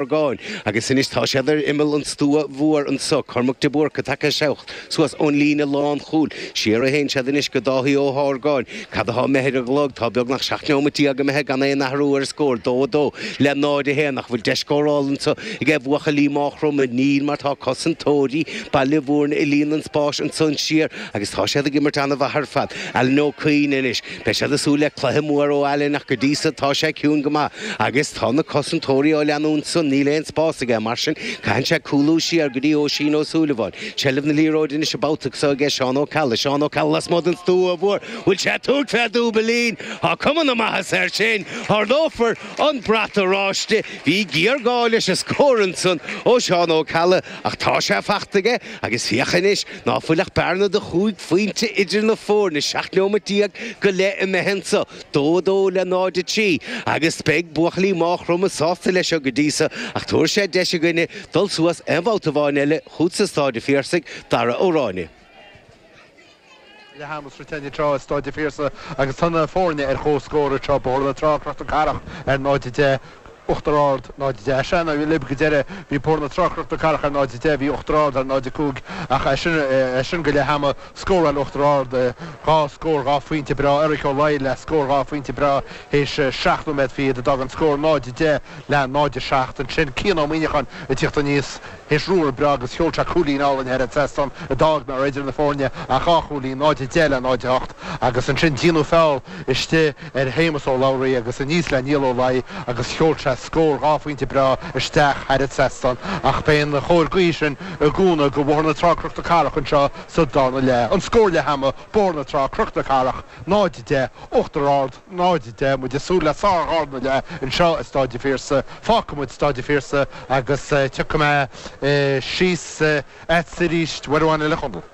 Chorcáin, agus anois tá siad ar imeall an stua mhóir anso, Cormac de Búrca, tagtha amach suas ón líne lánchúil, siar a théann siad anois go Dáithí Ó hArgáin, cad atá imithe ar an gclog, tá beagnach seacht neomat déag imithe gan aon athrú ar an scór, dó a dó le náid a haon, ach an bhfuil deis scórála anso aige buachaillí Maigh Chromtha, níl, mar tá cosantóirí Baile Mhúirne ag líonadh an spáis ansan thiar, agus tá siad ag imirt an-mhaith ar fad, Alan Ó Cuinn anois. Beidh siad ag súil le cluiche mór ó Alan ach go dtí so tá sé ciúin go maith agus tá na cosantóirí á leanúint ansan, níl aon spás aige, mar sin caitheann sé cúlú siar go dtí Oisín Ó Súilleabháin. Seilbh na liathróide anois an babhta so aige Seán Ó Ceallaigh, Seán Ó Ceallaigh lasmuigh den stua mhór, bhfuil sé ag tabhairt fé dhúbailín, tá cuma na maitheasa air sin, ardófar an brat oráiste, bhí géarghá leis an scór ansan ó Seán Ó Ceallaigh ach tá sé faighte aige agus féach anois, Ná fuil ach bearna de chúig phointe idir na foirne, seacht neomat déag go leith imithe anso, dó a dó le náid a trí, agus beidh buachaillí Maigh Chromtha sásta leis seo go dtí so, ach tabharfaidh sé deis againne dul suas aon bhabhta amháin eile chút sa Staid an Phiarsaigh, Darragh Ó Ráinne. Leath ama sroichte anseo i Staid a' Phiarsaigh agus tá na foirne ar chomhscór anseo, Bóthar na Trá, Cnoc na Cathrach, ar 0:10, Uachtar Ard, 0:10. Ar sean, libh go deireadh bhí Bóthar na Trá, Cnoc na Cathrach ar 0:10, bhí Uachtar Ard ar 0:05 ach as sin, as sin go leath ama, scóráil Uachtar Ard dhá scór dhá phointe breá, Eric Ó Laidhigh le scór dhá phointe breá théis seacht nóiméad fichead a d'fhág an scór 0:10 le 0:07 ansin, Cian Ó Muineacháin ag tíocht aníos. Théis ruathar breá agus sheol sé cúilín álainn thar an trasnán a d'fhág nach raibh idir na foirne ach dhá chúilín, 0-10 le 0-8, agus ansin díonadh feall istigh ar Shéamus Ó Labhraí agus aníos le Niall Ó Laidhigh agus sheol sé scór dhá phointe breá isteach thar an trasnán ach beidh an chóir ghaoithe sin i gcúnamh go Bhóthar na Trá-Cnoc na Cathrach anseo sa darna leath. An scór leath ama, Bóthar na Trá, Cnoc na Cathrach, 0-10, Uachtar Ard. 0:10, muid ag súil le sár-dharna leath anseo i Staid a' Phiarsaigh. Fágfaidh muid Staid a' Phiarsaigh agus tiocfaidh mé síos a'tsa aríst, uair amháin eile, a Chonaill.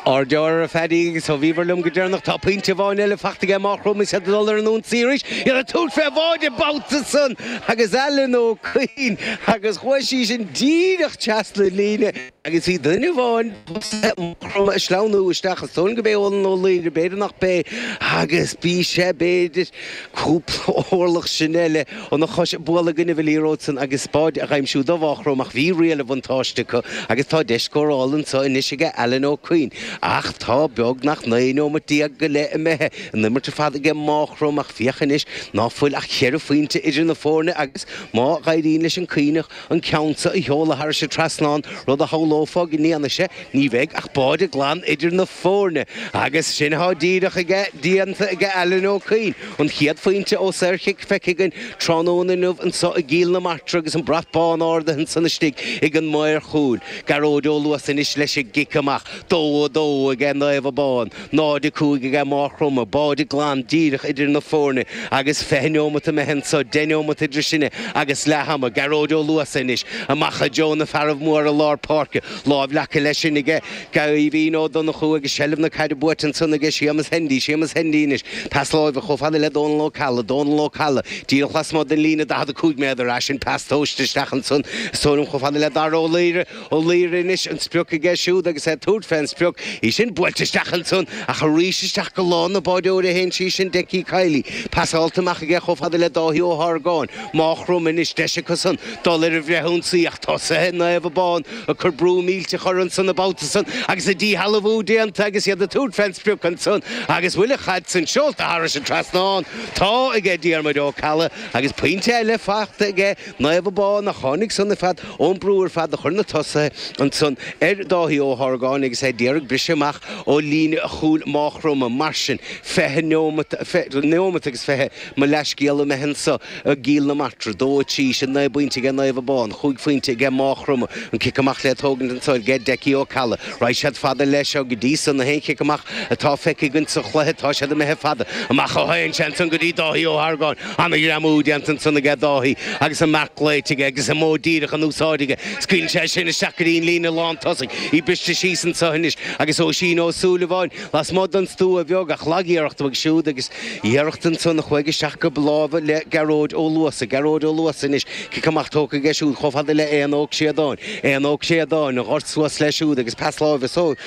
Ár deora ar Phaddy agus ó bhíobhair liom go deireanach. Tá pointe amháin eile faighte aige Maigh Chromtha, iad ag dul ar an ionsaí arís. Iad ag tabhairt fé bháide an babhta san agus Alan Ó Cuinn agus chuaigh sí sin díreach trasna an líne. agus bhí duine amháin as Maigh Chromtha ag sleamhnú isteach is dóigh liom gurb é Eolann Ó Laoghaire b'fhéidir nach b'é agus bhí sé b'fhéidir cúpla orlach sin uile óna chois ag bualadh i gcoinnibh na liathróide san agus báide á aimsiú do Mhaigh Chromtha ach bhí riail an bhuntáiste acu agus tá deis scórála anso anois aige Alan Ó Cuinn ach tá beagnach naoi neomat déag go leith imithe an imirt ar fad aige Maigh Chromtha ach féach anois ná fuil ach cheithre phointe idir na foirne agus má dh'éiríonn leis an gCuinneach an ceann seo a sheoladh thairis an trasnán, rud a shamhlófá go ndéanfaidh sé, ní bheidh ach báide glan idir na foirne. Agus sin atá díreach aige, déanta aige Alan Ó Cuinn. An chéad phointe ó saorchic feicthe againn tráthnóna inniu anseo i gCill na Martra agus an brat bán ardaithe ansan istigh ag an maor chúil, Gearóid Ó Luasa anois leis an gcic amach. 2-2 aige Naomh Abán. 0-5 aige Máchromtha, báide glan díreach idir na foirne agus fiche neomat imithe anso, deich neomat idir sinne agus leath ama, Gearóid Ó Luasa anois, amach i dtreo na fearaibh móra lár páirce, lámh leagtha leis sin aige Caoimhín Ó Donnchú agus seilbh na caide buaite ansan aige Séamus Hendy, Séamus Hendy anois, pas láimhe chomh fada le Dónal Ó Ceallaigh, Dónal Ó Ceallaigh díreach lasmuigh den líne 45 méadar, as sin pas tomhaiste isteach ansan is tuairim chomh fada le Dara Ó Laoire, Ó Laoire anois an sprioc aige siúd agus é ag tabhairt fé an sprioc, í sin buailte isteach ansan ach arís isteach go lámha an bháireora a théann sí, sin Decky Kiely. Pasáilte amach aige chomh fada le Dáithí Ó hArgáin, Máchromtha anois, deis acusan dul ar an bhfrithionsaí ach tosaithe Naomh Abán ag cur brú millteach orthu ansan an babhta san agus an díshealbhú déanta agus iad ag tabhairt fén sprioc ansan agus bhuel an chaid san seolta tharais an trasnán, tá, aige Diarmuid Ó Ceallaigh agus pointe eile fachta aige. Naomh Abán a tháinig san ar fad ón brú ar fad a chuir na tosaithe ansan ar Dháithí Ó hArgáin agus é d'iarraidh briseadh amach ó líne chúil Máchromtha. Mar sin, fiche neomat agus fiche, mo leathscéal, imithe anso i gCill na Martra. Dó, trí, sin naoi bpointe aige Naomh Abán, chúig phointe aige Máchromtha, an cic amach le tógaint anso aige Decky Ó Ceallaigh. Raghaidh siad fada leis seo go dtí so, na haon chic amach atá feicthe againn sa chluiche, tá siad imithe fada amach ó tagann sé ansan go dtí Dáithí Ó hArgáin. Ana ghreamú déanta ansan aige Dáithí agus an marc glaoite aige agus an modh díreach in úsáid aige. Scaoileann sé sin isteach go dtí an líne lán tosaigh, í briste síos anso anois agus Oisín Ó Súilleabháin lasmuigh don stua bheag ach lagiarracht uaidh siúd agus iarracht ansan a chuaigh isteach go lámha le Gearóid Ó Luasa. Gearóid Ó Luasa anois, cic amach tógtha aige siúd chomh fada le Éanna Ó Créadáin. Éanna Ó Créadáin, an gort suas leis siúd agus pas láimhe